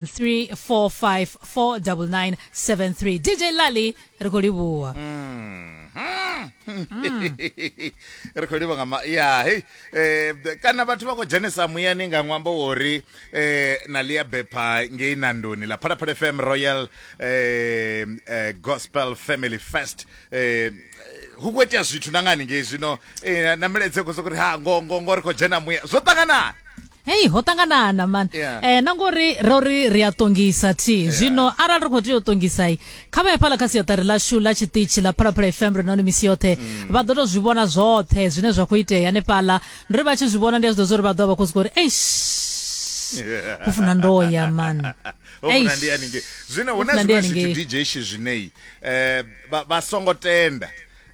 3454973 dj lali ri khou livhuwa ri khou livha nga ma ya hei eh, kana vhathu vha khou dzhenesa muyani nga ṅwambo wo ri eh, na lia bepha ngei nandoni ḽa phalaphala fm royal eh, eh, gospel family fest eh, hu khou itea zwithu na ngani ngei zwino eh, na milaedze khou sokou ri ha ngo ngo ngo ri khou dzhena muya zwo ṱanganani hei ho ṱanganana man yeah. eh, na ngori ro ri ri a ṱongisa thi yeah. zwino arali ri khou tea u ṱongisai kha vha hafhaḽa kha siaṱari lashu ḽa tshiṱitshi ḽa phalaphala fm ri noni misi yoṱhe mm. vha ḓo to zwi vhona zwoṱhe zwine zwa khou itea hanefhaḽa ndo ri vha tshi zwi vhona ndi a zwi ḓo zwo ri vha ḓo vha khou zwi uri eish ho funa ndo ya man zwino hu na zwiṅwe zwithu dj shi zwineyi um eh, vha songo tenda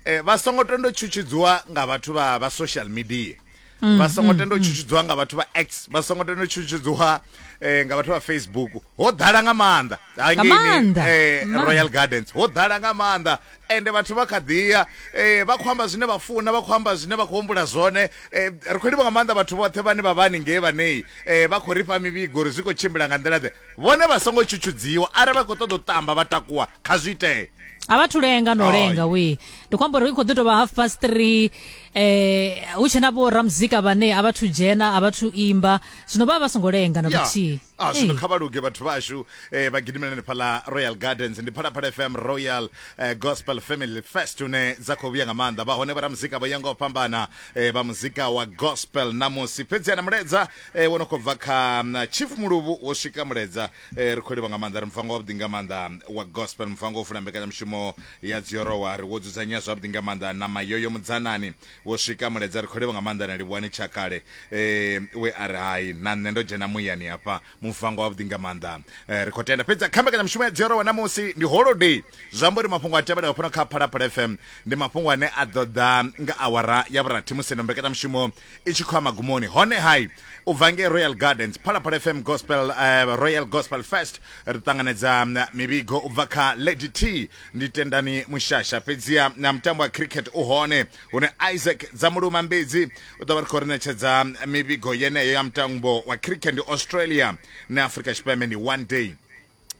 um vha songo tenda tshutshidziwa nga vhathu vha social media mm, vha songo mm, tenda u mm. tshutshudziwa nga vhathu vha x vha songo tenda u tshutshudziwa eh, nga vhathu vha facebook ho ḓala nga maanḓa hangeni eh, royal gardens ho ḓala nga maanḓa ende vhathu vha kha ḓiya eh, vha khou amba zwine vha funa vha khou amba zwine vha khou humbula zwone eh, ri khou livha nga maanḓa vhathu vhoṱhe vhane vha vhani ngei vhanei eh, vha khou ri fha mivhigo uri zwi khou tshimbila nga nḓila ḓe vhone vha songo tshutshudziwa arali vha khou ṱoḓa u tamba vha takuwa kha zwi itee a vha thulenga no lenga we ndi khou amba uri i khou ḓi tou vha half past three eh hu tshena vho ramuzika vhane a vhathu dzhena a vhathu imba zwino vha vha songo lenga na kuthihi a ah, zwino kha vha luge vhathu vhashu eh vha gidimelane phala Royal Gardens ndi phala phala FM Royal eh, Gospel Family Fest une dza khou vhuya nga maanḓa vha hone vha ramuzika vha yanga u fhambana eh vha muzika wa gospel na musi fhedzi ana muledza eh wono khou bva kha mm, Chief Muluvhu wo swika muledza eh ri khou livha nga maanḓa ri mfango wa vhuḓi nga maanḓa wa gospel mfango u funa mbekanyamushumo Ya Dzioro wa ri, Wo dzudzanyea zwavhuḓi nga maanḓa na Mayoyo Mudzanani. Wo swika Muledza, ri khou livhuwa nga maanḓa na Livhuwani Tshakale eh, we a ri, Hai, na nṋe ndo dzhena muyani hafha. Muvango wavhuḓi nga maanḓa. Eh, ri khou tenda. Fhedzi kha mbekanyamushumo ya Dzioro wa ṋamusi ndi Holiday. Zwi amba uri mafhungo a tevhelaho fhano kha Phalaphala FM ndi mafhungo ane a ḓo ḓa nga awara ya vhurathi musi ino mbekanyamushumo i tshi khou ya magumoni hone hai u bva ngei royal gardens phalaphala fm gospel uh, royal gospel fest ri ṱanganedza mm, mivhigo u bva kha lady t ndi tendani mushasha fhedziha na mutambo wa cricket u hone hune isaac dza muluma mbidzi u ḓo vha ri khou ri ṋetshedza mm, mivhigo yeneyo ya mutambo wa cricket ndi australia na afrika tshipembe ndi one day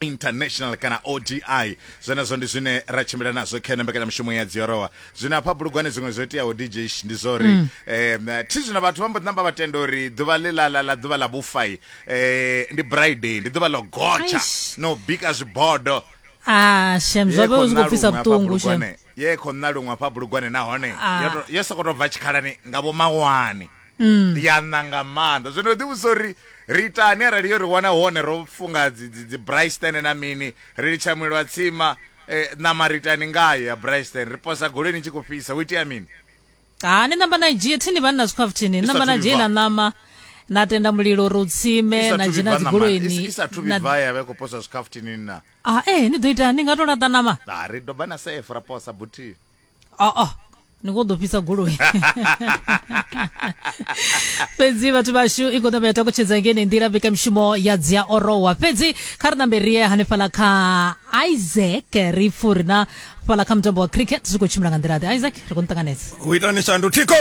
international kana odi zwenezwo ndi zwine ra tshimbila nazwo kha mbekanyamushumo ya dziorowa zwino hafha bulugwane zwiṅwe zwo iteaho dj ndi zwo ri um mm. thi zwino vhathu vha mbo namba vha tenda uri ḓuvha ḽi ḽa ḽa ḓuvha ḽa vhufai um eh, ndi briday ndi ḓuvha ḽo gotsha no bika zwibodo ah shem zwo vha zwi khou pfisa vhuṱungu shem ye khou nna luṅwe hafha bulugwane nahone ah. yo sokou tou bva tshikhalani nga vho mawani mm. ya ṋa nga maanḓa zwino ḓi vhusa uri ri itani arali yo ri wana hone ro funga dzi bryston na mini ri litsha mulilo wa tsima eh, ṋama ri itani ngayo ya bryston ri posa goleni i tshi khou fhisa hu itea mini ha ni namba na dzhie thini vhanna zwi khapfu thini namba na dzhie na ṋama na tenda mulilo uri u tsime na dzhena dzigoloini isa thu vha ya vha khou posa zwi khapfu thini na ah eh ni ḓo ita ni nga to laṱa ṋama ri doba na safe ra posa buthihi aa ah, ah. ni khou ḓo fhisa goloi fhedzi vhathu vhashu i khou ṋamba ya takutshedza ngene nḓila mbekamishumo ya dzi a orowa fhedzi kha ri ṋambe rie hanefhala kha isaac ri furi na fhala kha mutambo wa cricket zwi khou tshimbila nga nḓila ḓe isaac ri khou ni ṱanganedza u itani shandu thiko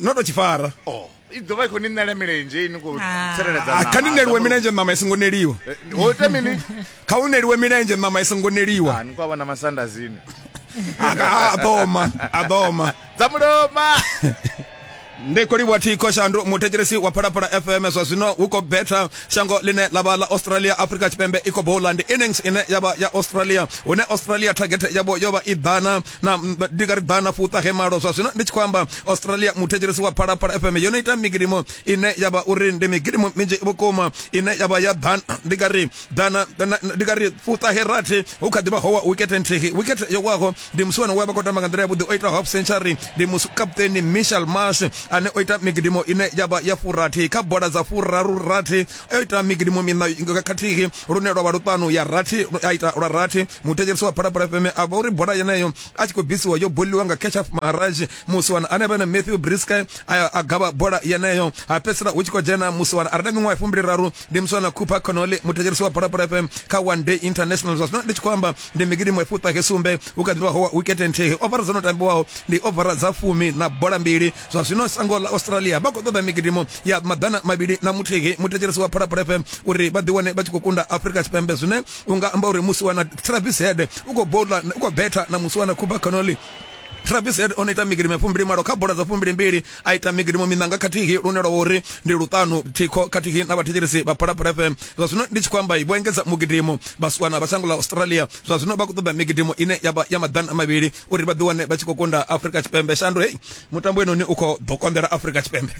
no to tshifara oh i ḓovha i khou ni ṋela milenzhe ini khou ah. tsireledza ah, kha ni neliwe milenzhe ṋama i songo neliwa eh, ho ita mini kha u neliwe milenzhe ṋama i songo neliwa ah, ni khou vhona masanda zini a ḓoma a ḓoma dza muloma ndi khou livhuwa thikho shandu muthetshelesi wa phalaphala fm zwa zwino hu khou betha shango ḽine ḽa vha ḽa australia africa tshipembe i khou bowla ndi innings ine ya vha ya australia hune australia target yavho yo vha i ḓana na ndi nga ri bana fuṱa he malo zwa zwino ndi tshi khou amba australia muthetshelesi wa phalaphala fm yo no ita migidimo ine ya vha uri ndi migidimo minzhi vhukuma ine ya vha ya ḓana ndi nga ri ḓana ndi nga ri fuṱa he rathi hu kha ḓivha howa wikete nthihi wikete yo waho ndi musi wana we vha khou tamba nga nḓila yavhuḓi o ita half century ndi musi kaputeni michel marsh ane o ita migidimo ine ya vha ya furathi kha bola dza furaru rathi a ita migidimu miṋa khathihi lune lwa vha luṱanu ya rathi a ita lwa rathi muthetshelesi wa phalaphala fm a vha uri bola yeneyo a tshi khou bvisiwa yo boliwa nga ketchup maharaj musiwana ane vha na matthew briska a gavha bola yeneyo ha fhedzisela hu tshi khou dzhena musiwana a re na miṅwaha fumbili raru ndi musiwana cooper conole muthetshelesi wa phalaphala fm kha one day international zwa zwino ndi tshi khou amba ndi migidimu efuṱahe sumbe hu kha ḓivha howa wikete nthihi ovara dzo no tambiwaho ndi ovara dza fumi na bola mbili zwa zwino shango ḽa australia vha khou ṱoḓa migidimo ya maḓana mavhili na muthihi muthetshelesi wa phalaphala fm uri vha ḓiwane vha tshi khou kunda afrika tshipembe zwine u nga amba uri musi wana travis head u khou bola u khou betha na musi wana cuba canoli Travis Head o ita migidimo fumbili malo kha bola dza fumbili mbili a ita migidimo minanga khathihi lune lwa uri ndi luṱanu thikho khathihi na vhathetshelesi vha Phalaphala FM zwa zwino ndi tshi khou amba vho engedza mugidimo vhasiwana vha shango ḽa Australia zwa zwino vha khou ṱoḓa migidimo ine ya vha ya maḓana mavhili uri vha ḓi wane vha tshi khou kunda afurika tshipembe shandu hei mutambo wenoni u khou ḓo konḓela afurika tshipembe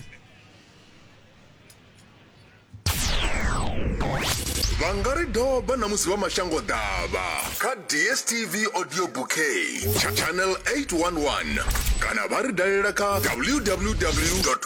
vha nga ri doba na musi vha mashango ḓavha kha dstv audio bouquet channel 811 kana vha ri dalela kha www